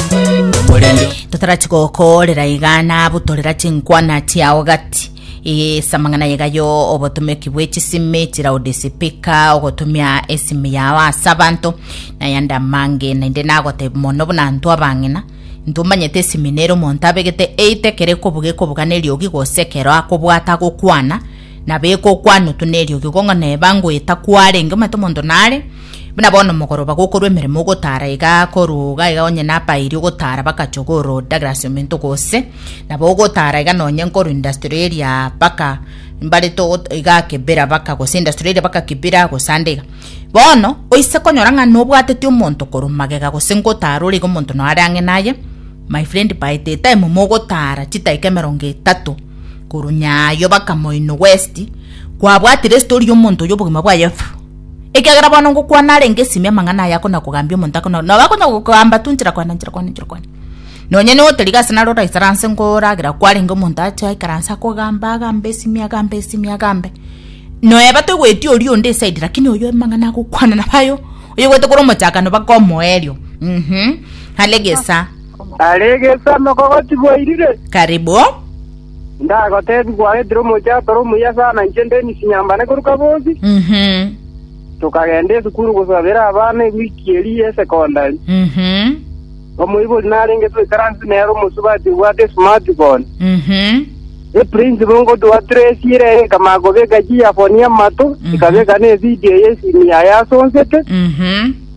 Omorembe. totarachi gokorera iga nabu torera chinkwana chiao gati ase amang'ana yegayo obotomeki bwe chisimi chilaudisipika ogotumia esimu yao ase abanto nayande amange naende nagoteba mono buna ntwe abang'ina intwe omanyete esimi nere omonto abegete eite ekero ekobuga ekobuga neriogi gose ekero akobwata agokwana nabo egokwana otu neriogi gong'o neba ngoeta kwarenge omanyete omonto nare Buna bono mogoroba gokorwa emeremo ogotara iga korwa iga iga onye nabairi ogotara bakacha ogoro Douglas omento gose nabo ogotara iga nonye nkorwa industry area baka mbarete ogot- iga kibira baka gose industry area baka kibira gose ande iga bono oise konyora ng'a nobwateti omonto korwa magega gose ngotara ore iga omonto noo are ang'e naye my friend by the time mogotara chidakika emerongo etato korwa nyayo baka moino west kwabwatire story ya omonto oyo obogima bwaye fu. ekiagera bono ngokwana arenge esimi amang'ana aya akona kogambia omonto akona nabo akonya gokogamba tu nchera kwane nchera kwane nchera kwane nonye nigo otoriga ase naro oraisara anse ngoragera kwarenge omonto ache aikara anse akogamba agambe esimi agambe esimi agambe noeba toigweti oria onde esaidi lakini oyo amang'ana agokwana nabo ayo oyoigwete kore omochakano baka omoerio mhm alegesa Aregesa mokogotiboirire. karibu Onde agoteebia, Gwaretire omochie atore omuya sana, inche Dennis nyambane korwa Kabozi. Tokagenda esukuru gosabera abana ewiki eria y'esekondari. Omoibori narenge twaikaranse nere omosubati obwate esmartphone. Eprinsipal ngotuatracire ere ekamanya kobeka chiearphone amato, ekabeka na evidio y'esimi yaye asonsete.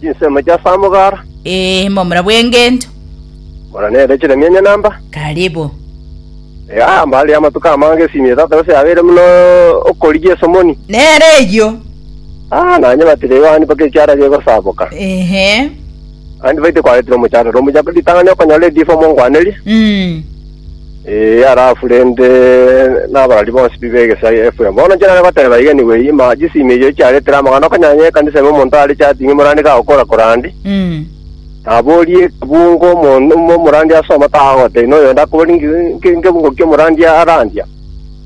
Chinsemo chia Samgar. Ee, momura bw'engento. Mora nere chiremi enye namba. Karibu. Iga mbare amatuko amange esimi etato gose abere buna okorigia esomoni. Nere eyio. Ah, nanyebatire igo aandi mpaka ekiara gegosaboka. Ehe. Aandi baite kwaretire omochandore omuya ritang'ani okonyora edifa omonkwanerie. Mm. Ee, arafu rende nabarari bonsi bibe egesaai efwe. Bono inche nare goteba iga nigo eyima chisimi echio chiaretire amang'ana okonyanya ekanisa ime omonto are chatingi morandi gagokora korandi, Mm. naborie ekebungo omonto omo omorandi asoma tagagotebia na oyonde akoborie nki nki nkebungo kia omorandi arandia.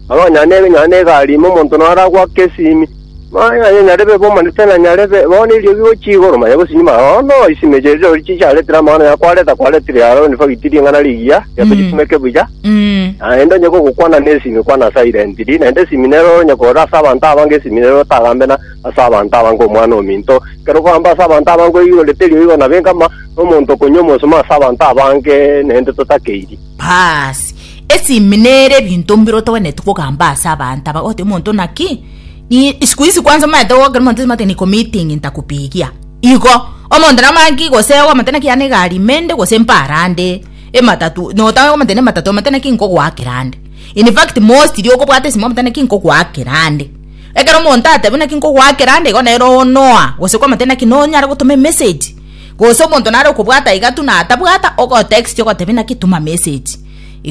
Nabo onye nonye ne egari ime omonto naro agoaka esimi, Maya aye nyarebe bomanete na nyarebe bo neriogi gochia igoro maya gose nyuma. Bono chisemi echi erio chicharetire amang'ana ya kwareta kwaretire Haroni fagiti ring'ana rigiya riato rikumeke buya, naende onye gogokwana nesimi kwana silently, naende esimi nero onye korora ase abanto abange esimi nero otagambe na ase abanto abange omwana ominto. Ekero okogamba ase abanto abange oigorete eriogi igoro na benka ama nomonto okonywa omosemo ase abanto abange naende totakeirie. Baasi, esimi nere ebinto mbire otogeneti kogamba ase abanto aba, ogoteba omonto naki? Ii, siku hizi kwanza omaete goka omonto ase amate niko meeting ntakupigia. Igo, omonto nabo maki gose oamate naki yane egari ime inde gose mpara ande, ematatu, nota oamate na ematatu oamate naki nkogoakera ande. In fact mostly okobwata esimo oamate naki nkogoakera ande. Ekero omonto atebi naki nkogoakera ande igo nere onoa gose kwamate naki nonyare gotoma emessage, gose omonto nare okobwata iga tu natabwata, ogotexti ogotebi naki tuma message,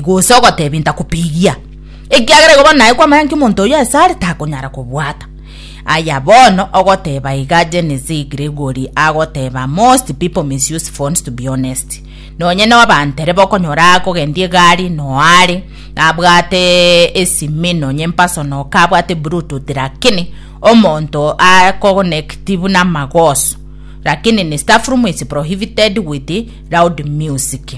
gose ogotebi ntakupigia. ekiagera igo bono naye kwamayanki omonto oyio ase are takonyara kobwata. Aya bono ogoteba iga Genesee Gregory agoteba most people misuse phones to be honest. Nonye no abantere bokonyora akogendia egari no are abwate esimi nonye mpasono ka abwate bluetooth lakini omonto akogonekti buna amagoso lakini ni staff room is prohibited with loud music.